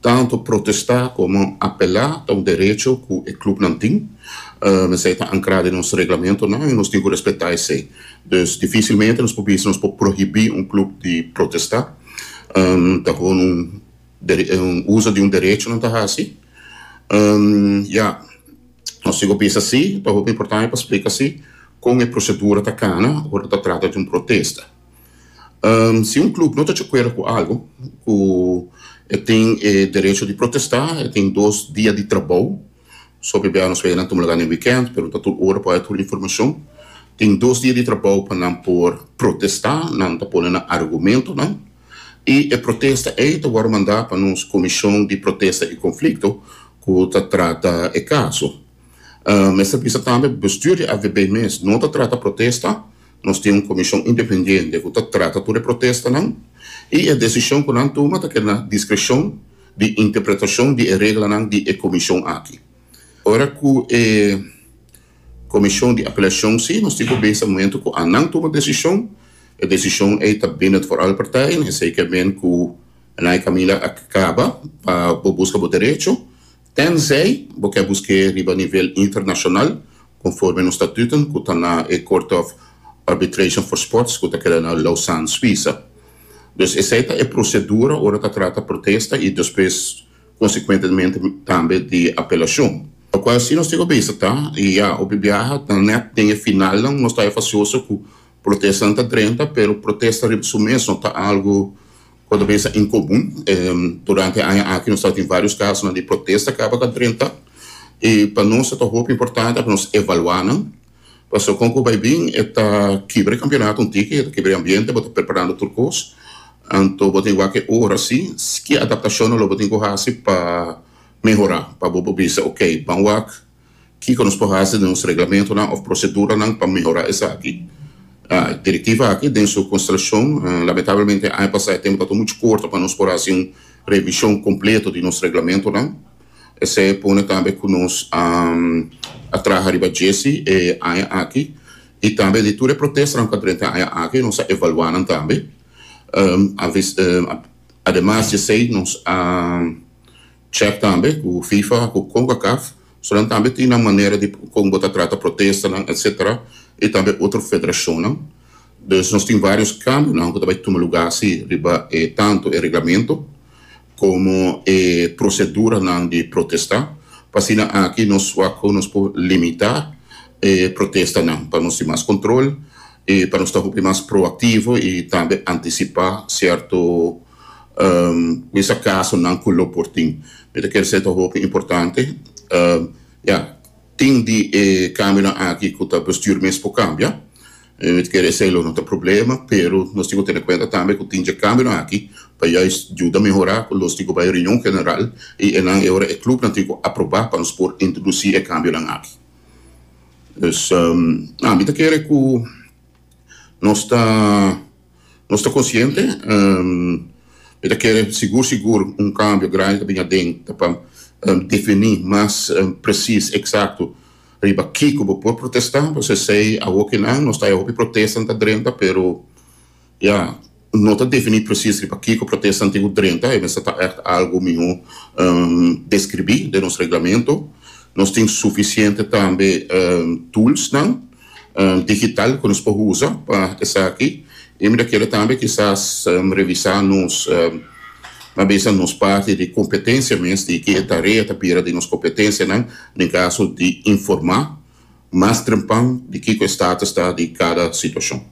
Tanto protestá komo apelá ta un derecho ku e klubnan tin. Esei ta ankrá den nos reglamentonan i nos tin ku respetá esei. Dus difísilmente nos por bisa nos por prohibí un klub di protestá. Ta gewoon un un uso di un derecho nan ta hasi. Ya, nos sigu bisa sí, ta hopi importante pa splika sí kon e prosedura ta kana ora ta trata di un protesta. Ehm, si un club no ta chocuera cu algo, cu e tin e derecho di protesta, e tin dos dia di trabou, so p'e nos wei nan tuma laga den weekend, pero no ta tur ora pa bay tur informacion, tin dos dia di trabou pa nan por protesta, nan ta pone nan argumentonan, y e protesta ey ta worde manda pa nos Comision di Protesta y Conflicto cu ta trata e caso. Ehm, mester bisa tambe, bestuur di AVB mes no ta trata protesta, Nos tin un komishon independiente ku ta trata tur e protestanan i e desishon ku nan tuma ta keda na diskreshon di interpretashon di e reglanan di e komishon aki. Ora ku e komishon di apelashon si nos tin ku bisa momentu ku a nan tuma desishon, e desishon ei ta bini di vooral partij, esei ke men ku nan e kaminda a kaba pa bo buska bo derecho Tenzij bo ke busk'é riba nivel internashonal, konforme nos statuten ku ta na e Court of Arbitration for Sports ku ta keda na Lausanne, Suisa. Dus esei ta e prosedura ora ta trata protesta i despues konsekuentemente tambe di apelashon. Pa kua si nos tin ku bisa ta, i ya, hopi biaha ta nèt den e finalnan nos ta efasyoso ku protestanan ta drenta, pero protesta riba su mes no ta algu. Por mesa en komun. Durante e aña aki nos tabata tin vários kasonan di protesta kaba ta drenta i pa nos tabata hopi importante pa nos evaluá nan pasobra kon ku bai bin e ta kibra e kampionato un tiki, e ta kibra e ambiente, bo ta preparando tur kos anto bo tin wak e ora si ke adaptashonnan lo bo tin ku hasi pa mehorá pa bo por bisa okay ban wak. Kiko nos por hasi den nos reglamentonan of proseduranan pa mehorá esaki? Direktiva aki den su konstrashon, lamentablemente aña pasá e tempu tabata muchu korto pa nos por hasi un revishon kompleto di nos reglamentonan. Esei pone tambe ku nos a traha riba djesi e aña aki i tambe di tur e protestanan ku a drenta e aña aki nos a evaluá nan tambe. Ademas di esei nos a. Check tambe cu Fifa cu Concacaf so nan tambe tin nan manera di con bo ta trata protestanan etc. Y tambe otro federacionnan. Dus nos tin varios cambionan cu ta bay tuma lugar asi riba e tanto e reglamento como e proceduranan di protesta pa asina aki nos wak nos por limita e protestanan pa nos tin mas control y pa nos ta hopi mas proactivo y tambe anticipa cierto mester casonan cu lo por tin. Mi ta kere ser ta hopi importante. Ya, tin di e cambionan aki cu ta bestuur mes por cambia. Mi ta kere esey lo no ta problema, pero nos tin cu tene cuenta tambe cu tin dje cambionan aki pa juist juda mehora cu los tin cu bay reunion general y enan e ora e clubnan tin cu aproba pa nos por introduci e cambionan aki. Dus, mi ta kere cu nos ta. Nos ta konsiente, mi ta kere sigur sigur un kambio grandi ta bini aden, ta pa definí mas presis, eksakto riba kiko bo por protestá, pasobra esei awor kinan nos ta haña hopi protestanan ta drenta pero ya no ta definí presis riba kiko protestanan tin ku drenta, e mester ta ègt algu mihó deskribí den nos reglamento. Nos tin sufisiente tambe tulsnan. digital ku nos por usa pa esaki i mi ta kere tambe kisas revisá nos tal bes ta nos parti di kompetensia mes di ki e tarea ta bira den nos kompetensianan den kaso di informá mas drempan di kiko e status ta di kada situashon.